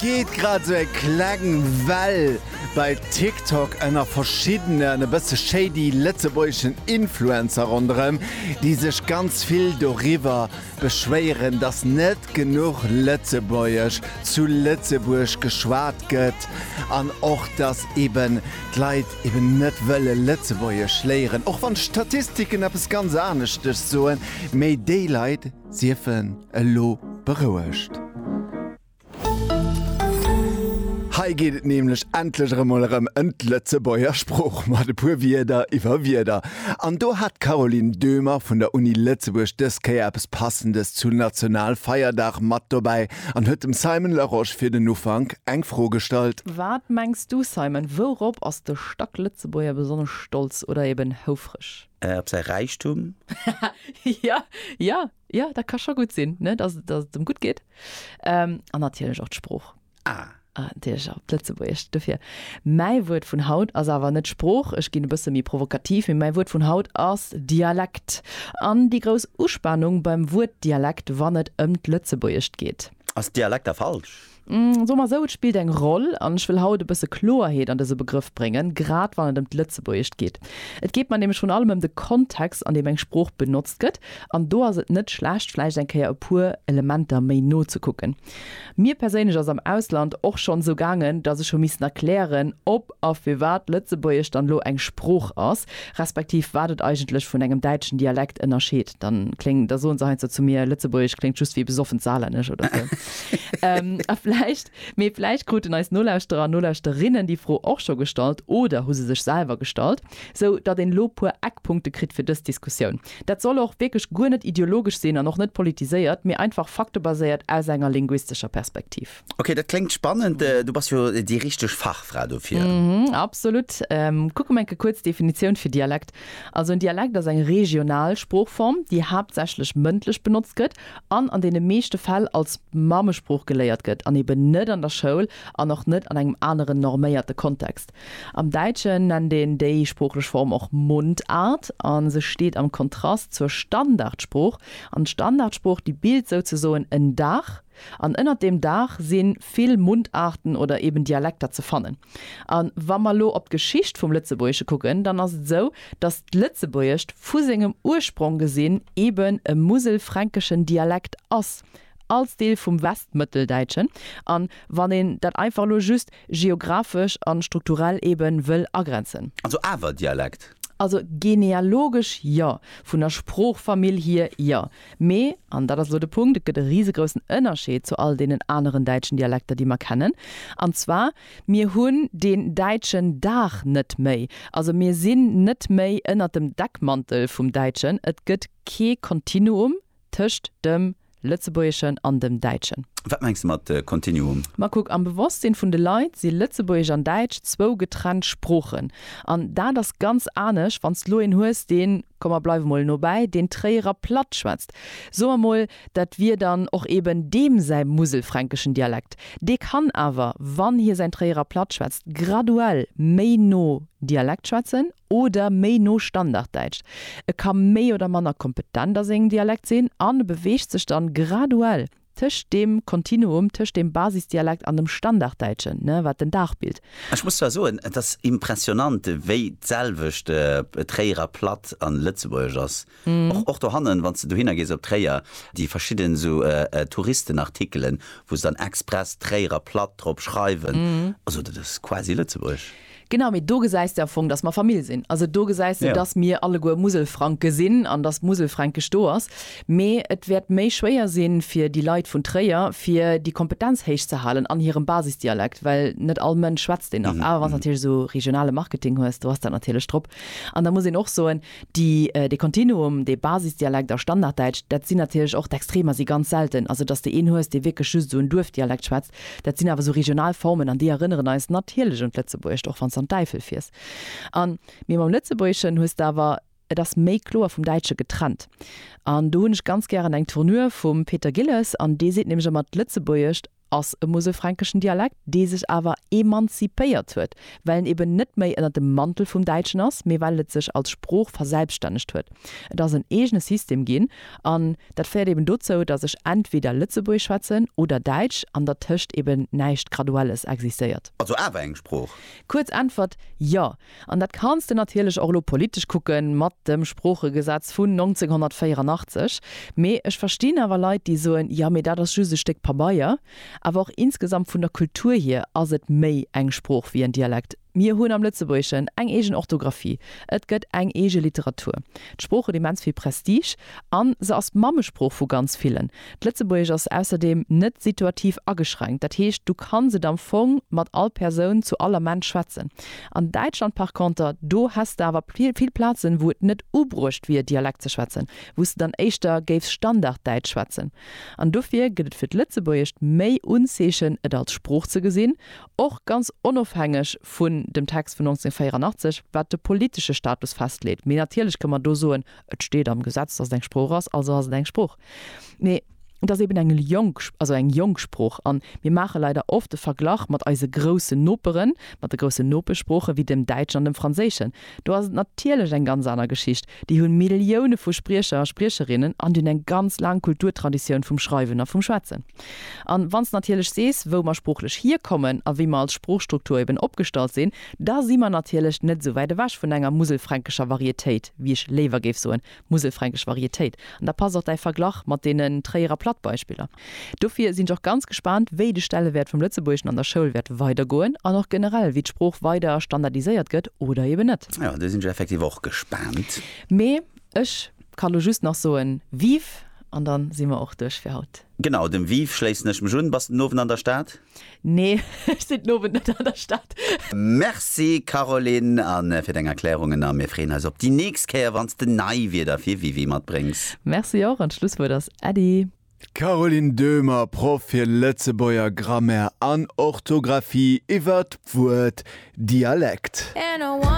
geet grad esou eng kleng Well bei TikTok ënner verschiddenen e bësse shady lëtzebuergeschen Influencer ronderëm, déi sech ganz vill doriwwer beschwéieren, datt net genuch Lëtzebuergesch zu Lëtzebuerg geschwat gëtt an och datt eben d'Leit eben net wëlle Lëtzebuergesch léieren, och wann d'Statistiken eppes ganz aneschtes soen. Mee déi Leit siefen elo berouegt. Hei geet et nämlech endlech erëm mol erëm ëm d'Lëtzebuerger Sprooch mat e puer Wierder iwwer Wierder. An do hat d'Caroline Döhmer vun der Uni Lëtzebuerg dës Kéier eppes Passendes zu Nationalfeierdag mat dobäi an huet dem Simon Larosche fir den Ufank eng Fro gestallt. Wat mengs du, Simon, wourop ass de Stack Lëtzebuerger besonnesch stolz oder eben houfreg? Op säi Räichtum? Haha, jo, jo, Jo, dat ka scho gutt sinn, ne, dass, dass et em gutt geet. Ähm, an natierlech och d'Sprooch. Ah. Ah, natierlech och d'Lëtzebuergescht dofir. Mäi Wuert vun haut ass awer net Sprooch, ech ginn e bësse méi provokativ, mee mäi Wuert vun haut ass Dialekt. An déi grouss Uspanung beim Wuert Dialekt, wann et ëm d'Lëtzebuergescht geet. Ass Dialekt da falsch? Soe mer esou, et spillt eng Roll, an ech wëll haut e bësse Kloerheet an dëse Begrëff bréngen, grad wann et ëm d'Lëtzebuergescht geet. Et geet mer nämlech vrun allem ëm de Kontext, an deem eng Sprooch benotzt gëtt, an do ass et net schlecht, vläicht eng Kéier e puer Elementer méi no ze kucken. Mir perséinlech ass am Ausland och schonn esou gaangen, dass ech hu missen erklären, ob. a firwat Lëtzebuergesch dann elo eng Sprooch ass, respektiv wat et eigentlech vun engem däitschen Dialekt ënnerscheet, da kléng, da soen se heiansdo zu mir, Lëtzebuergesch kléngt just wéi besoffent Saarlännesch oder sou. A vläicht, mee vläicht kruten eis Nolauschterer an Nolauschterinnen déi Fro och scho gestallt oder hu se sech selwer gestallt, sou datt een elo puer Eckpunkte kritt fir dës Diskussioun. Dat soll och wierklech guer net ideologesch sinn an och net politiséiert, mee einfach faktebaséiert aus enger linguistescher Perspektiv. Okay, dat klingt spannend. Äh, du bist jo die richtig Fachfrau dofir. Mhm, absolut. Ähm, kucke enke kurz Definition für Dialekt. Also en Dialekt ass eng regional Sproochform, déi haaptsächlech mëndlech benotzt gëtt an an deene meeschte Fäll als Mammesprooch geléiert gëtt an eben net an der Schoul an och net an engem aneren norméierte Kontext. Am Däitschen nennt een déi sproochlech Form och Mundart a se steet am Kontrast zur Standardsprooch an d'Standardsprooch, déi bilt souzesoen en Daach, An ënnert deem Daach si vill Mundarten oder eben Dialekter ze fannen. A wa mer elo op d'Geschicht vum Lëtzebuergesche kucken, dann ass et esou, datt d'Lëtzebuergescht vu sengem Ursprong gesinn eben e muselfränkeschen Dialekt ass, als Deel vum Westmëtteldäitschen, a wann een dat einfach elo just geographesch a strukturell eebe wëll agrenzen. Also awer Dialekt? Also genealogesch jo, vun der Sproochfamill hier jo, Mee, an dat ass elo de Punkt, et gëtt e risegroussen Ënnerscheed zu all deenen aneren däitschen Dialekter, déi mer kennen, an zwar, Mir hunn deen däitschen Dag net méi. Also mir sinn net méi ënnert dem Deckmantel vum Däitschen. Et gëtt kee Kontinuum tëscht dem Lëtzebuergeschen an dem Däitschen. Wat mengs de mat Kontinuum? Ma kuck, am Bewosstsinn vun de Leit si Lëtzebuergesch an Däitsch zwou getrennt Sproochen. An dat ass ganz anescht, wann s de elo een hues, deen. Komm mer bleiwe mol nobäi, deen Tréierer Plattschwätzt, so mer mol, dat wier dann och eben deem säi muselfränkeschen Dialekt. Dee kann awer, wann hie säin Tréierer Plattschwätzt, graduell méi no Dialekt schwätzen oder méi no Standarddäitsch. E ka méi oder manner kompetent a sengem Dialekt sinn an e beweegt sech dann graduell tëscht deem Kontinuum tëscht dem Basisdialekt an dem Standarddäitschen, ne, wat den Dag bilt. Ech muss zwar soen, et ass impressionant, wéi d'selwecht Tréierer Platt a Lëtzebuergesch ass. Och, och dohannen, wann s de dohinner gees op Tréier, déi verschidden esou Touristenartikelen, wou se dann express Tréierer Platt drop schreiwen, also dat ass quasi Lëtzebuergesch. Genau, mee do gesäis de am Fong, dass mer Famill sinn. Also do gesäis de, dass mir alleguer Muselfranke sinn an dass d'Muselfränkesch do ass. Mee et wäert méi schwéier sinn, fir déi Leit vun Tréier, fir déi Kompetenz héich ze halen an hirem Basisdialekt, well net all Mënsch schwätzt deen nach. Awer wann s de natierlech esou regionale Marketing hues, do ass dat natierlech drop. An da muss een och soen, déi, dee Kontinuum, dee Basisdialekt a Standarddäitsch, dat sinn natierlech och d'Extremer, si ganz selten. Also dass de een hues, dee wierklech just esou en Duerfdialekt schwätzt, Dat sinn awer esou regional Formen an déi erënneren eis natierlech un d'Lëtzebuergescht, och wann s de an d'Äifel fiers. An, mee mam Lëtzebuergeschen hues de awer, et ass méi kloer vum Däitsche getrennt. An do hunn ech ganz gären eng Tournure vum Peter Gilles an dee seet nämlech ëmmer, d'Lëtzebuergescht ass e muselfränkeschen Dialekt, dee sech awer emanzipéiert huet, well en eben net méi ënner dem Mantel vum Däitschen ass, mee well et sech als Sprooch verselbstännegt huet. Et ass en eegene System ginn. An dat féiert eben dozou, datt ech entweder Lëtzebuergesch schwätzen oder Däitsch an dertëscht eben näischt Graduelles existéiert. Also awer eng Sprooch? Kuerz Äntwert, Jo. An dat kanns de natierlech och elo politesch kucke mat dem Sproochegesetz vun 1984. Mee ech verstinn awer Leit, déi soen, Jo, mee dat ass just e Stéck Pabeier. Awer och insgesamt vun der Kultur hier ass et méi eng Sprooch wéi en Dialekt. Mir hunn am Lëtzebuergeschen eng eegen Orthografie, et gëtt eng eege Literatur. D'Sprooch huet immens vill Prestige a se ass d'Mammesprooch vu ganz villen. D'Lëtzebuergesch ass ausserdeem net situativ ageschränkt, dat heescht, du kanns et am Fong mat all Persoun zu all Ament schwätzen. An Däitschland par conter, do häss de awer vill Plazen, wou et net ubruecht wier, Dialekt ze schwätzen, wou s de dann éischter géifs Standarddäitsch schwätzen. An dofir gëtt et fir d'Lëtzebuergescht méi Unzeechen, et als Sprooch ze gesinn, och ganz onofhängeg vun dem Text vun 1984, wat de politesche Status festleet. Mee natierlech kënne mer do soen, Et steet am Gesetz, dass et eng Sprooch ass, also ass et eng Sprooch. Mee et ass eben eng jonk, also eng jonk Sprooch. A mir maache leider oft de Verglach mat eise groussen Noperen, mat de groussen Nopeschsproochen, wéi dem Däitschen an dem Franséischen. Do ass et natierlech eng ganz aner Geschicht. Déi hunn Millioune vu Spriecher a Spriecherinnen an déi hunn eng ganz laang Kulturtraditioun vum Schreiwen a vum Schwätzen. An wann s de natierlech sees, wou mer sproochlech hierkommen a wéi mer als Sproochstruktur eben opgestallt sinn, da si mer natierlech net esou wäit ewech vun enger muselfränkescher Varietéit, wéi ech léiwer géif soen, muselfränkesch Varietéit. An da passt och däi Verglach mat deenen Tréierer Plattbeispiller. Dofir sinn ech och ganz gespaant, wéi de Stellewäert vum Lëtzebuergeschen an der Schoul wäert weidergoen an och generell, wéi d'Sprooch weider standardiséiert gëtt oder eben net. Jo, do sinn ech effektiv och gespaant. Mee ech ka lo just nach soen, Vive! An dann si mer och duerch fir haut. Genau, dem Viv schléissen ech mech un. Bass de den Owend an der Stad? Nee, ech sinn den Owend net an der Stad. Merci Caroline an fir deng Erklärungen a mir freeën eis op déi nächst Kéier wanns de nei Wierder fir Vivi matbréngs. Merci och an d'Schlusswuert ass Äddi. Caroline Döhmer, Proff fir Lëtzebuerger Grammaire an Orthografie, iwwert d'Wuert Dialekt.